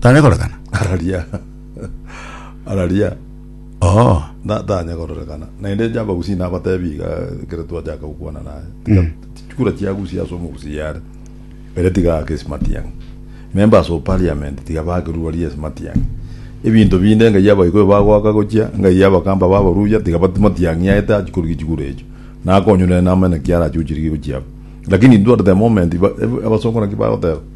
Tanya korekana. Araria. Araria. Oo. Na- tanya kororekana naende jaba gusii nabatebi iga ekero twachaka gokwana naye tiga Mm. chikura chiagusia ase omogusii yare ere tiga aake ase matiang'i members of parliament tiga baake rugori ase matiang'i ebinto binde ngai abagoyo bagoaka gochia ngai abakamba babarusia tiga batu matiang'i aye tachi korugia chigura echio nakonywa nere namanya naki arachuchirigie gochia abwo lakini intwe at the moment ba- ebe- abasongo naki bagoteba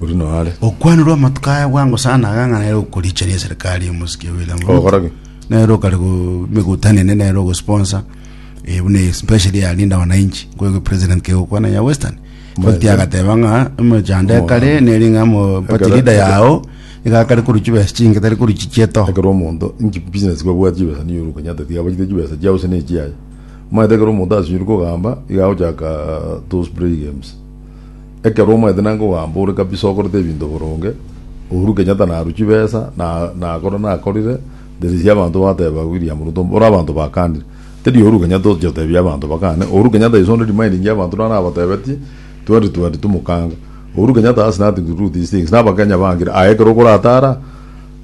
Oria noyo are. Okwanirwa amatuko aya bwango sana iga ng'a nere okorichania eserikari y'omosike William Ruto. Ogokora ki? Nere okare go- megutano ene nere ogosponsor eh, buna especially ya Linda Wananchi kwego president kegokwana ya Western. Bati agateba ng'a emechando ekare neri ng'a mo party Ekero- leader ekero- yao iga akare korwa chibesa chinge tari korwa chichieto. ekero omonto inki business kwabwate chibesa niyo ore okonyata tiga abachete chibesa chiao gose ne chiaye omanyete ekero omonto asinyirwe kogamba iga agochaka those play games Ekero omanyete nanga ogamba ore kabisa okorete ebinto boronge, Uhuru Kenyatta narue chibesa na nakora nakorire, theresia abanto bateba William Ruto mbore abanto bakanire. Teri Uhuru Kenyatta otoche otebia abanto bakane, Uhuru Kenyatta ise onde remindinge abanto naro abatebetie 2022 mokanga. Uhuru Kenyatta has nothing to do these things, na abakenya bangire aye ekero okoratara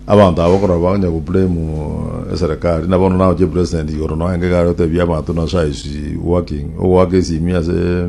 abanto aba okorora banya go blame eserekari na bono naoche president igoro noe enga igare otebie abanto naso I is working, ogoaka esimi ase.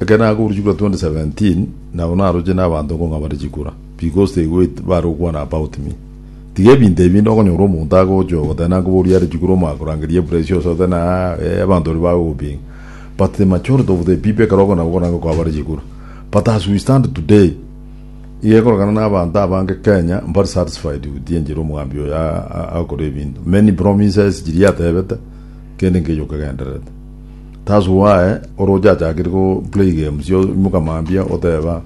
Ekero nakoburwa chikura 2017 nabo naroche nabanto nkong'abare chikura because they wait bare gokwana about me. Tiga ebinto ebi inde okonyora omonto agocha ogoteba nankobori are chikura omoakorangeria epressure ase ogote na eh abanto baria bagogopinga. But the majority of the people ekero okona gokora nko kwabare chikura. But as we stand today iga ekorokana na abanto abange Kenya mbare satisfied with enchera omogambi oyo agokora ebinto. Many promises chiria atebete kende nkechi okegendererete. Tasu waye ore ochachakire go play games yo imoka mambia oteba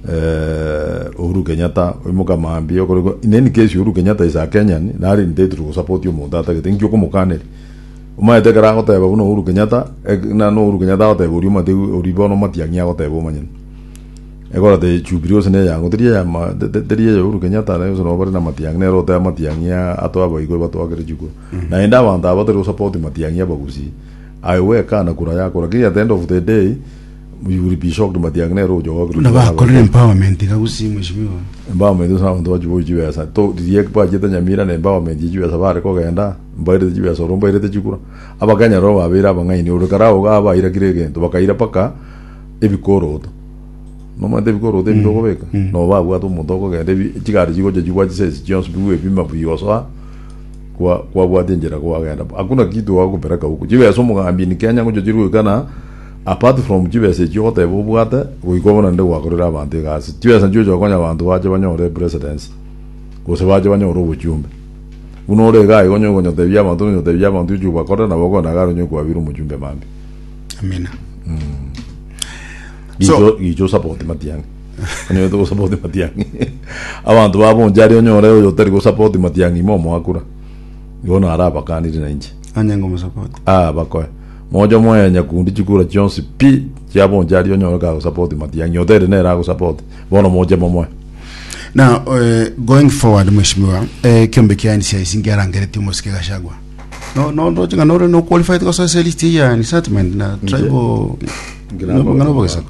eh, Uhuru Kenyatta imoka mambia okore go in any case Uhuru Kenyatta is a Kenyan nari entitled to support omonto atagete inki okomokaneri omaete ekero agoteba buna Uhuru Kenyatta ek- na no Uhuru Kenyatta agoteba oria omate ori bono omatiang'i agoteba omanyene egora te Jubilee ose neyango teri eya ma- te- te- teri eya Uhuru Kenyatta na ose nabo bare na matiang'i nero oteba matiang'i a- atwa abaigwe batwakere chikuru naende abanto aba batari gosupport matiang'i abagusii Aye gwekana kura yakora kiri at the end of the day you will be shocked matiang'i nere ochogokerwa Buna chibesa bakorire abachie. empowerment iga gusii mheshimiwa. Empowerment ase abanto bachiboyie chibesa to riria bachete Nyamira na empowerment ya chibesa bare kogenda mbairete chibesa oro mbairete chikura abakenya nabo babeire abang'aini ore kare ago iga abairakire egento bakaira mpaka ebikoroto nomanyete ebikoroto ebi tokobeka nabo babwate omonto okogenda ebi chigari chigocha chigwa chisesi chionsi bigwepima bigosoa Kwa, kwabwati enchera kwagenda bo. Hakuna kitu oagopereka huko. Chibesa omogambi in Kenya ngocho chiri goika na apart from chibesa echio ogoteba obwate, goika bono nende gwakorire abanto egasi. Chibesa nchiocho okonya abanto bache banyore epresidency, gose bache banyore obochumbe. Buna ore iga iga onye okonya otebia abanto nonya otebia abanto ochi obakorere nabo okogenda gare onye okwabire omochumbe mambi. Amina. So- Gicha, gicha osapoti matiang'i. Onyegete gosapoti Matiang'i. Abanto babo oncha aria onyore oyo otari gosapoti Matiang'i ime omoakura. Igo naro abakanire na inche. Onye ngomusapoti. Ah, bakoe. Moche omoye nyakundi chikura chionsi pi chiabo oncha aria onyore kagosapoti Matiang'i. Otere nere agosapoti. Bono moche momoe. Now, eh, going forward, Mheshimiwa, eh, kiombe kia ANC aisi ngiarangeretie omosike Gachagua. No, no, ndoche ng'a nore no qualified gosoa ase list eye ya incitement na tribal Ngira- ng'ana obogesako.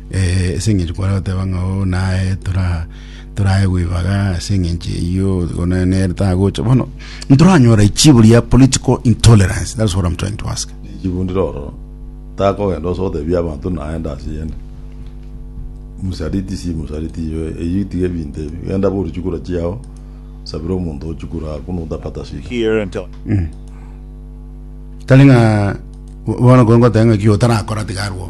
Eh, ase eng'encho kware goteba ng'a o naye tora toraye gwibaga ase eng'encho eyio gona nere tagocha bono ntoranyora ichibo ria political intolerance that's what i'm trying to ask chibundire ororo takogenda ose gotebia abanto naende ase yende msaliti si msaliti iwe eyio tiga ebinto ebi genda borie chikura chiao sabira omonto ochikura ako notapata shida here until tari ng'a bono ko ngoteba ng'a ki otarakora tiga arwo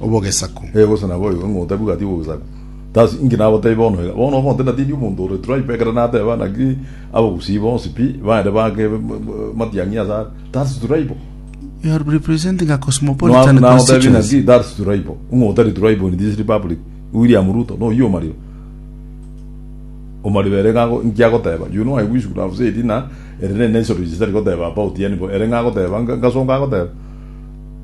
obogesaku. Ee, gose nabo oyoka ng'a otabigwe ati obogesaku. Thus, inki nagoteebie bono iga? Bono omonto natindi omonto ore tribe, ekero nateba naki abagusii bonsi pi, baende baake matiang'i ase are. Thus tribal. You are representing a cosmopolitan Nagoteebie constituency. naki thus tribal. Ng'a otari tribal in this republic, William Ruto, noyio omariro. Omariro ere ng'a inki agoteba. You know I wish could have said ng'a ere ne natural history goteba about yani bo, ere ng'a agoteba, ngasonga agoteba.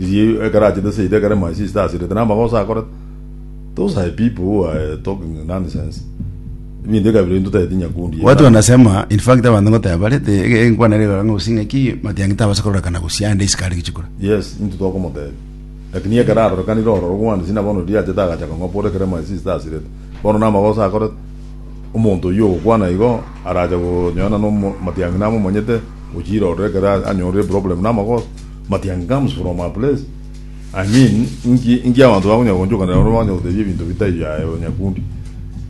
Riria ekero achete seito ekero my sister asirete namagoso akorete those are people who are talking nonsense ebinto ekabira into tagete nyakundi Watu wanasema in fact abantu ngoteba bare te ege enkwana ere igoro ng'a gose ng'aki matiangi tabasa korora kana gose ande isiko are gichikora. yes into tokomotebia lakini ekero arorekanire ororo gwani sina bono riria achete agacha kong'opora ekero my sister asirete bono namagoso akorete omonto oyio ogokwana igo arache gonyoana nomo matiangi namomanyete gochira ororo ekero anyorire problem namagoso Matiangamus from my place, I mean inki inki abanto bakonya gogonchokanera naende bakonya gotebia ebinto bitari biaye oo nyakundi.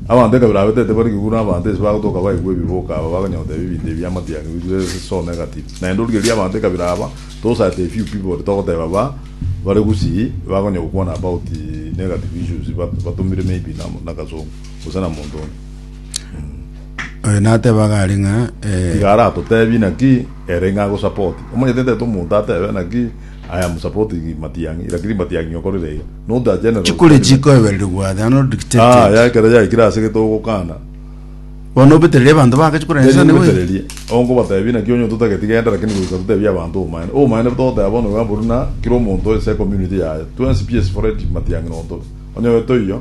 Abanto ekabira abetete bare kiguru na abanto ense bagotoka baigwe ebiboka aba bakonya gotebia ebinto ebia matiangi bire so negative. Naende origereria abanto ekabira aba those are the few people togoteba ba bare gusii bakonya gokwana about negative issues batumire maybe na kasongo gose na monto onde. Oyo nateba gari ng'a eh, Tiga aratotebi naki ere ng'a agosupport. Omanyete tete omonto atebe naki I am supporting Matiang'i lakini Matiang'i okorire iga. Not a general. chikure statement. chikoebererigwa they are not Ah, dictated ya ekero yaikire ase gete ogokana. bono obetereri abanto baka chikure Teri nsane we obetererie. Onkobatebi naki onye totageti genda lakini goika totebi abanto obomaene. Obomaene togoteba bono iga buna kera omonto ase ecommunity yaye. Twensi PS Fred Matiang'i nontore. Onye toiyo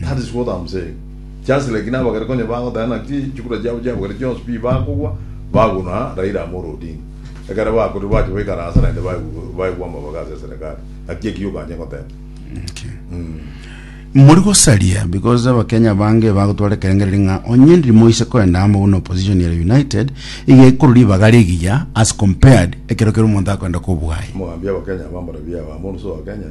That is what am saying just like nabagere konye bagoteba naki chikura chiabo chiabagere chionsi pi bakogwa baguna Raila Amolo Odinga ekero bakorire bache baikara ase naende baigwe baigwa amabaga ase eserekari naki ekio okanye goteba mori gosaria because abakenya bange bagotwara ekerengereri ng'a onye ndiri moise koenda amo buna opposition ere united iga ekuru ribaga rigiya as compared ekero kero omonto akoenda kobwayi mogambi abakenya bambara biabo amoruso wa kenya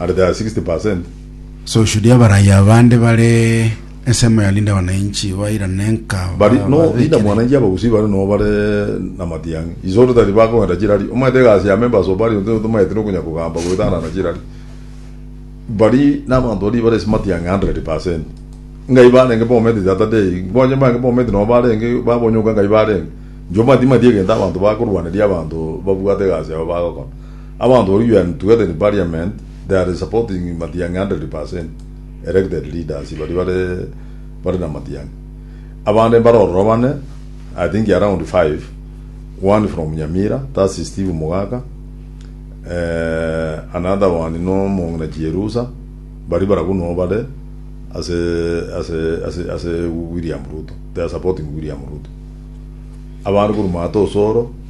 at their 60 percent. So should abarayia abande bare ensemo ya Linda Mwananchi bairane nka But no Linda babekire? Mwananchi abagusii bare no bare na matiang'i isore tari bakogenda chirari omanyete egasi ya members of parliament nigo tomaete no konya kogamba goetanana chirari bari na abanto baria bare ase matiang'i 100 percent ngai barenge Bomet the other day nkonye mbange Bomet no barenge babonyoka ngai barenge inche omanyete timanyeti egento abanto bakorwaneria abanto babwate egasi yabo bagokora. Abanto baria you are together in parliament they are supporting matiangi hundred percent elected leaders baria bare bare na matiangi abande mbare ororo bane i think around five one from nyamira that's steve mugaka eeh another one no omongina chierusa baria barabwo no bare ase ase ase ase william ruto they are supporting william ruto abande korwa maate osoro.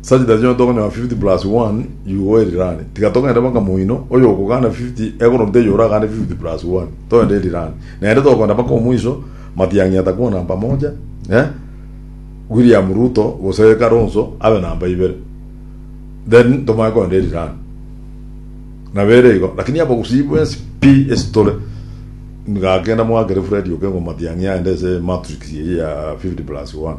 Sajda chionsi tokonyora fifty plus one yugo erirani, tiga togende baka moino, oyokogana fifty ekorwa nteyo oragane fifty plus one togende erirani. Naende togokenda baka omoiso, Matiang'i atakuwa namba moja, eh, William Ruto gose Kalonzo abe namba ibere. Then tomanye kogenda erirani. Nabo ere igo, lakini abagusii bwensi pi ase tore, gaki kenda moakere Fred Okengo Matiang'i aende ase matrix eyio ya fifty plus one.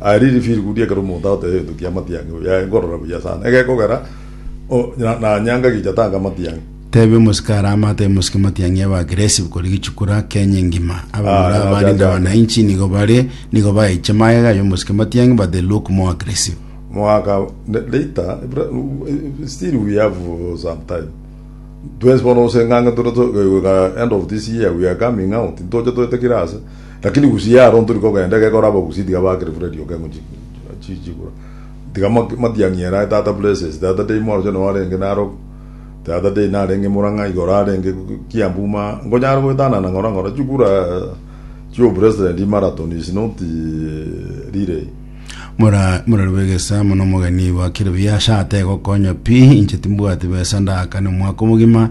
Aria ri firikudi ekero omonto agoteeba egento kia amatiang'i, oyo aye nkorora buya sana, egekogera o, na, na nyanga gicha tanga amatiang'i. Tebia omosike aria amato y'emosike matiang'i aba aggressive kori gichukura Kenya engima. Abamura Aye, abarinde nachachaga. wananchi nigo bare nigo baeche magega y'omosike matiang'i but they look more aggressive. Mwaka ne- later, bra- u- e- still we have uh, some time. Twensi bono gose ng'ang'a tore to- goika end of this year we are coming out, ntoche toete kira ase. Lakini gusii yaro ntori kogenda, egekora abagusii tiga bakire buna rioka eng'u chichigura. Tiga matiang'i erae tata blesses tata dei mwaruse noo arenge naroku tata dei narenge murang'a igoro arenge kiambu ma ngonyara goetanana ng'ora ng'ora chigura chio president marathon is not relay. Mura murarue egesa mono omogeni bakire buya asha ategokonya pi inche timbwati besa ndagakane omwaka omogima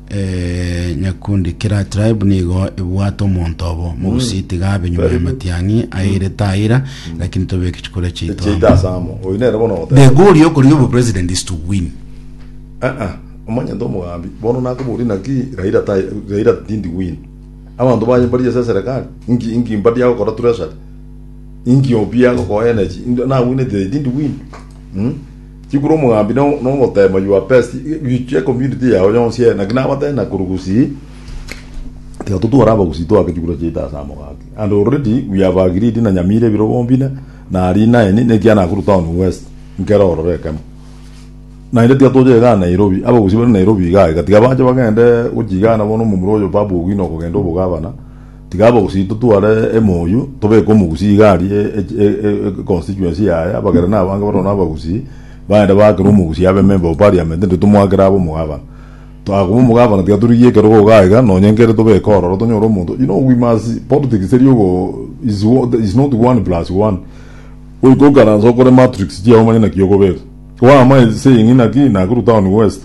Nyakundi, kera tribe nigo ebwate omonto obo mogusi, tiga abe nyuma y'amatiang'i aire taira, lakini tobeke chikura chiaito Echiaito amo. ase amo. Oyo nere bono The ogoteba. goal y'okorigia obopresident is to win. Eh eh. Omanyete omogambi. Bono nakoboria naki Raila tai Raila didn't win. Abanto baye mbari ase eserekari. Inki inki mbari agokora treasury. Inki obi agokoa energy. Inde nawinete they didn't win. Mh. Chikuru omogambi nogoteba mayuo a pest gichie ecommunity yao yonsi ere naki nabatebie nakoru gusii tiga totware abagusii toake chikuro chiaito ase amogati and already we have agreed na nyamira ebiro bombina na aria inaeni nekia nakuru town west nkere ororo ekemo naende tiga tocha igana nairobi abagusii bare nairobi igaa iga tiga bache bagende gochigana bono omomura oyo babu ogino okogenda obogabana. Tiga abagusii totware emoyio, tobeke omogusii igari econstituency yaye, abagera nabange baroro nabagusii, baende baakere omogusii abe ememba o parliament, erio tomoakere abe omogabana. Akoba omogabana tiga torigie ekerogo igaa igaa, nonye nkere tobeke ororo tonyore omonto, you know we must, politics teri ogo is wo- is not one plus one. Goika okaranse okore matrix chiago omanye naki okobeka. Kwamanye saying ng'ina ki Nakuru town west.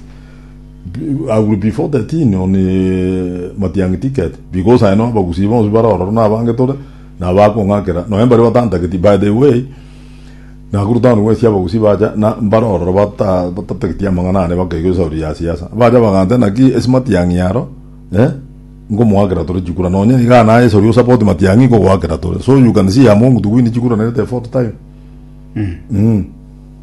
I will be 4:13 on matiang'i ticket because I know abagusii bonsi bare ororo nabange tore na abakong'akera nonya mbaria batantageti by the way Nakuru town west abagusii bacha na mbare ororo batatageti amang'ana ane bakaigwa esauri ya siasa bacha bagantebia naki ase matiang'i aro eh nkomoakera tore chikura nonya igaa naye esauri osupport matiang'i nkogoakera tore so you can see among to win chikura nerete effort time mm.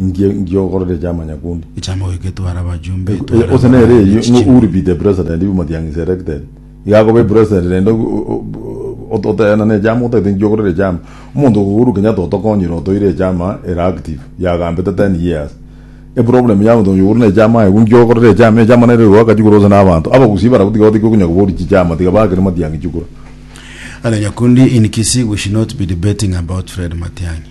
ngie ngiogorore echa amanyakundi. Ekiambo eke tware abajumbe, Eh, tware Ose nere abana, eyio ng'o echichimi. uri be the president if Matiang'i is elected. Iga akobe president rende o- o- o- ot- oteana na echama otagete nkiogorere echama. Omonto ogo Uhuru Kenyatta otokonyire otoire echama ere active yagambete ten years. Eproblem ya omonto oyo ore na echama aye igo nkiogorere echama, echama nere egoaka chikura ase na abanto. Abagusii barabwo tiga batiki okonya koboria chichama tiga baakere Matiang'i chikura. Alanyakundi in Kisii we should not be debating about Fred Matiang'i.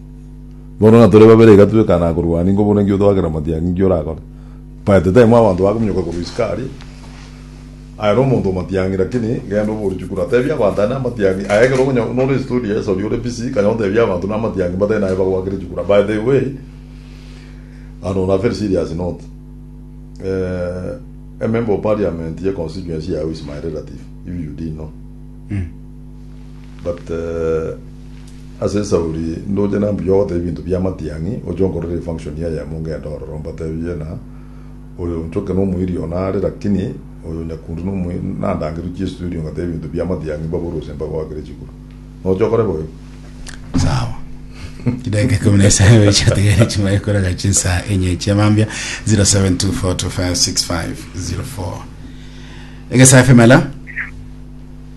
Bono ng'a tore babere iga twekane akorwania, inko buna inki otoakera amatiangi? Inki orakore? By the time abanto bakominyoka korwa isiko aria, aye nomonto omatiangi lakini genda obori chukuru atebie abanto aya namatiangi aye ekero okonya nore studio yes oria ore busy kanya otebie abanto namatiangi mbatari naye bagoakere chukura by the way ano na very serious note a member of parliament ye constituency yago is my relative if you didn't know. But ase esauri ndoche na mbuya ogoteba ebinto bia amatiang'i, oche onkorere efunction eyemo ngende ororo mbatebie na oyo onchoke nomoiri one are lakini oyo nyakundu nomoiri nandangeru chiestudio ngateba ebinto bia amatiang'i mbabore gose mbagoakere chiguru. Noche okore boigo. Sawa. Chidaika ikumi na isano echiatigare chimare koraga chinsa enye chia mambia 0724256504 Egesa FM hello